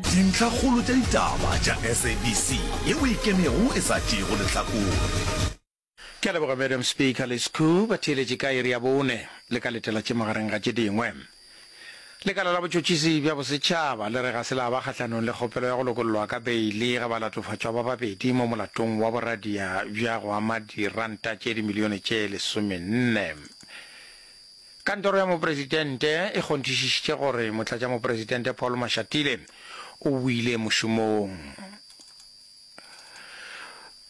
Dintlhakgolo tša ditaba tša SABC ye o ikemego e sa tšeego lehlakore. Ke a leboga Madam Speaker le scu ba theeletše ka iri ya bone le ka letela tše magareng ga tše dingwe. Lekala la botšotšisi bja bosetšhaba le re ga se la ba kgahlanong le kgopelo ya go lokollwa ka beili ga balatofatšwa ba babedi mo molatong wa boradia bja go ama diranta tše dimilione tše lesomenne Kantoro ya Mopresidente e kgonthišišitše gore Motlatšamopresidente Paul Mashatile o boile mošomong.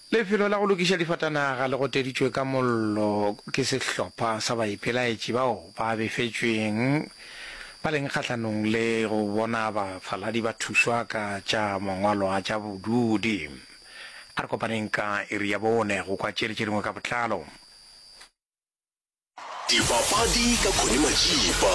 Lefelo la go lokiša difatanaga le goteditšwe ka mollo ke sehlopha sa baipelaetši bao ba befetšweng ba leng kgahlanong le go bona bafaladi ba thušwa ka tša mangwalo a tša bodudi. A re kopaneng ka iri ya bone go kwa tše dingwe ka botlalo. Dipapadi ka Connie Majiba,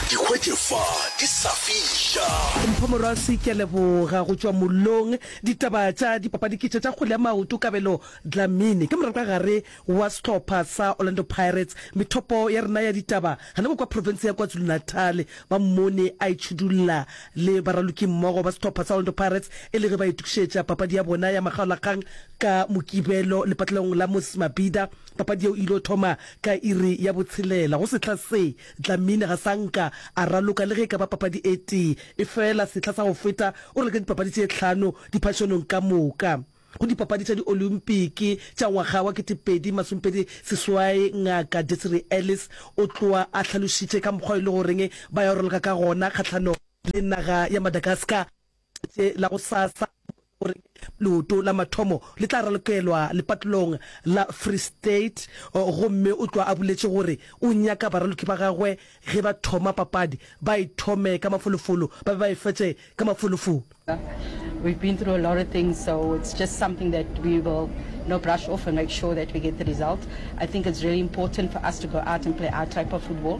di hwetše fa di sa fiša. Mpho Morwasi, ke a leboga. Go tšwa mollong, ditaba tša dipapadi ke tše tša kgwele ya maoto. Kabelo Dlamini ke moratagare wa sehlopha sa Orlando Pirates. Methopo ya rena ya ditaba gana mo kwa profense ya KwaZulu-Natal ba mmone a itšhudulla le baralokimmogo ba sehlopha sa Orlando Pirates e le ge ba itokišetša papadi ya bona ya makgaolakgang ka Mokibelo lepatlelong la Moses Mabhida Papadi yeo e il'o thoma ka iri ya botshelela. Go sehla se, Dlamini ga sa nka a raloka le ge e ka ba papadi e tee. Efela sehla sa go feta o raloke dipapadi tše hlano diphašonong ka moka. Go Dipapadi tša Diolympiki tša ngwaga wa ketepedi masomepedi seswai, Ngaka Desiree Ellis o tloa a hlalošitše ka mokgwa e lego goreng ba ya go raloka ka gona kgahlanong le naga ya Madagascar. Letše la gosasa gore leoto la mathomo le tla ralokelwa lepatolong la Free State gomme o tlwa a boletše gore o nyaka baraloki ba gagwe ge ba thoma papadi ba e thome ka mafolofolo ba be ba e fetše ka mafolofolo. We've been through a lot of things, so it's just something that we will you know, brush off and make sure that we get the result. I think it's really important for us to go out and play our type of football.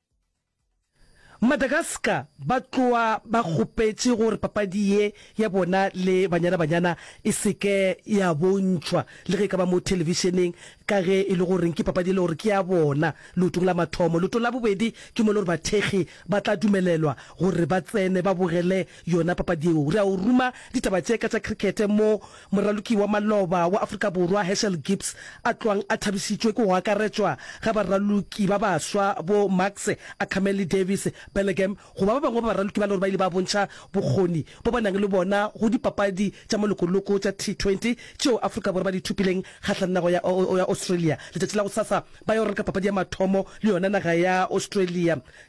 Madagascar ba tloa ba kgopetše gore papadi ye ya bona le Banyana Banyana e se ke ya bontšhwa le ge e ka ba mo thelebišeneng ka ge e le gore ke papadi e le gore ke ya bona leotong la mathomo. Leoto la bobedi ke mo e le gore bathekgi ba tla dumelelwa gore ba tsene ba bogele yona papadi yeo. Re a o ruma ditaba tše ka tša cricket mo Moraloki wa maloba wa Afrika Borwa Herschel Gibbs a tloang a thabisitšwe ke go akaretšwa ga baraloki ba baswa bo Marx, Akhamele, Davies, Belleghem go ba ba bangwe ba baraloki ba le gore ba ile ba bontšha bokgoni bo ba nang le bona go dipapadi tša molokoloko tša T20 tšeo Afrika Borwa ba di thopileng kgahlang nago ya Australia. Letšatši la gosasa ba yo reka papadi ya mathomo le yona naga ya Australia.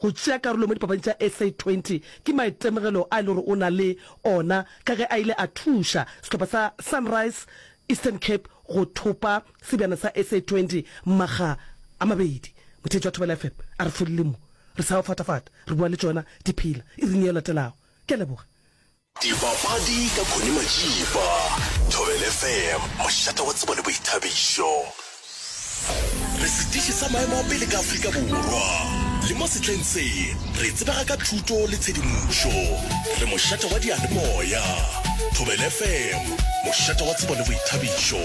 Go tšea karolo mo dipapading tša SA 20 ke maitemogelo a e le gore o na le ona ka ge a ile a thuša sehlopha sa Sunrise Eastern Cape go thopa sebjana sa SA 20 makga a mabedi. Motheetši wa Thobela FM a re folile mo, re sa o fatafata, re bua le tšona di phela iring ye latelago. Ke a leboga. Dipapadi ka Connie Majiba, Thobela FM, mošate wa tsebo le boithabišo. Re setiši sa maemo a pele ka Afrika Borwa, le mo sehleng se re tsebega ka thuto le tshedimošo. Re mošate wa diyalemoya. Thobela FM, mošate wa tsebo le boithabišo.